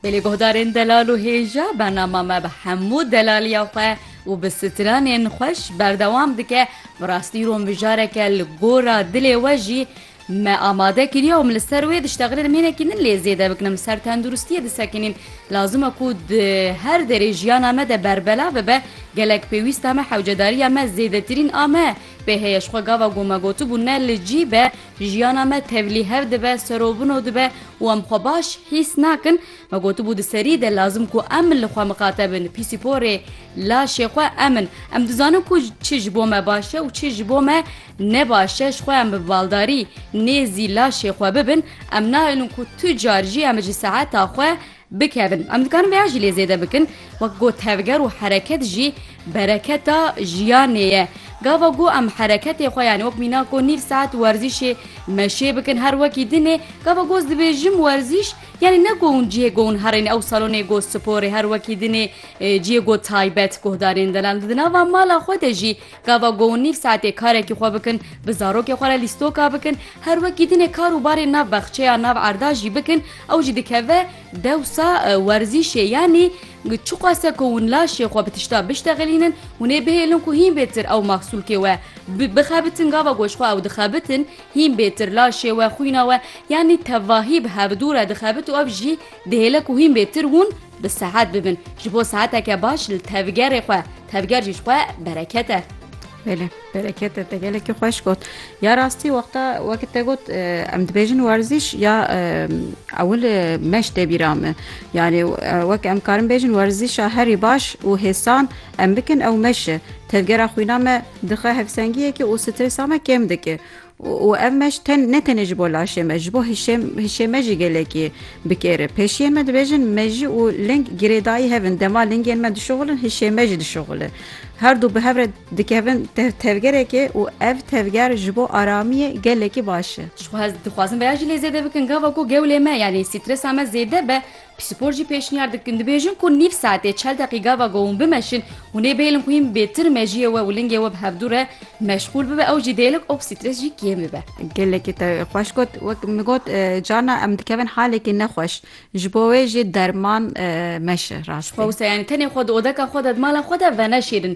Bi lêguhdarên delal û hêja bernama me bi hemû delaliya xwe û bi stranên xweş berdewam dike, bi rastî îro mijareke li gora dilê we jî me amade kiriye û min li ser wê diştexile demênekî din lê zêde bikin em ser tenduristiyê disekinîn lazim e ku di her derê jiyana me de berbelav bibe gelek pêwîsta me hewcedariya me zêdetirîn a me pê heye ji xwe gava ku me gotibû ne li cî be Jiyana me tevlî hev dibe, serobino dibe û em xwe baş hîs nakin. Me gotibû di serî de lazim ku em li xwe miqate bin. Pîsîporê laşê xwe em in. Em dizanin ku çi ji bo me baş e û çi ji bo me ne baş e. Ji xwe em bi baldarî nêzî laşê xwe bibin. Em naelin ku tu car jî em ji saeta xwe bikevin. Em dikarin vêya jî lê zêde bikin, wek ku tevger û hereket jî bereketa jiyanê ye. Gava ku em hereketê xwe yanî wek mîna ku nîv saet werzîşê meşê bikin her wekî din e. Gava ku ez dibêjim werzîş yanî ne ku hûn cihê ku hûn herên ew salonê ku sporê her wekî din e, cihê ku taybet guhdarên delal di nava mala xwe de jî Gava go û nîv saetê karekî xwe bikin, bi zarokê xwe re lîstoka bikin, her wekî dinê kar û barê nav baxçeya nav erda jî bikin, ew jî dikeve dewsa werzîşê yanî çiqase ku hûn laşê xwe bi tişta biştexilînin, hûn ê bihêlin ku hîn bêtir ew maxsûlkê we bixebitin, gava ku ji xwe ew dixebitin hîn bêtir laşê we, xwîna we yanî tevahî bi hevdû re dixebit û ev jî dihêle ku hîn bêtir hûn. Bi sehet bibin ji bo seheteke baş li tevgerê xwe, tevger jî ji xwe bereket e. Belê bereket e te gelekî xweş got. Ya rastî wexta wekî te got em dibêjin werzîş ya ewil meş tê bîra min. Yanî wek em karin bêjin werzîşa herî baş û hêsan em bikin ew meş e. Tevgera xwîna me dixe hevsengiyekê û stresa me kêm dike. Û ev meş ten ne tenê ji bo laşê me, ji bo hişê hişê me jî gelekî bi kêr e. Pêşiyên me dibêjin mejî û ling girêdayî hev in. Dema lingên me dişuxulin hişê me jî dişuxule. Her du bi hev re dikevin tev tevgerekê û ev tevger ji bo aramiyê gelekî baş e. Ji xwe hez dixwazin vêya jî lê zêde bikin. Gava ku gewlê me yanî stresa me zêde be Psîkor jî pêşniyar dikin dibêjin ku nîv saetê çel deqî gava ku hûn bimeşin, hûn ê bêlin ku hîn bêtir mejiyê we û lingê we bi hevdû re meşxûl bibe ew jî dêlik û stress jî kêm bibe. Gelekî te xweş got. Wek min got carna em dikevin halekî nexweş. Ji bo wê jî derman meşe rastî. Ji xwe wisa yani tenê xwe di odeka xwe de di mala xwe de veneşêrin.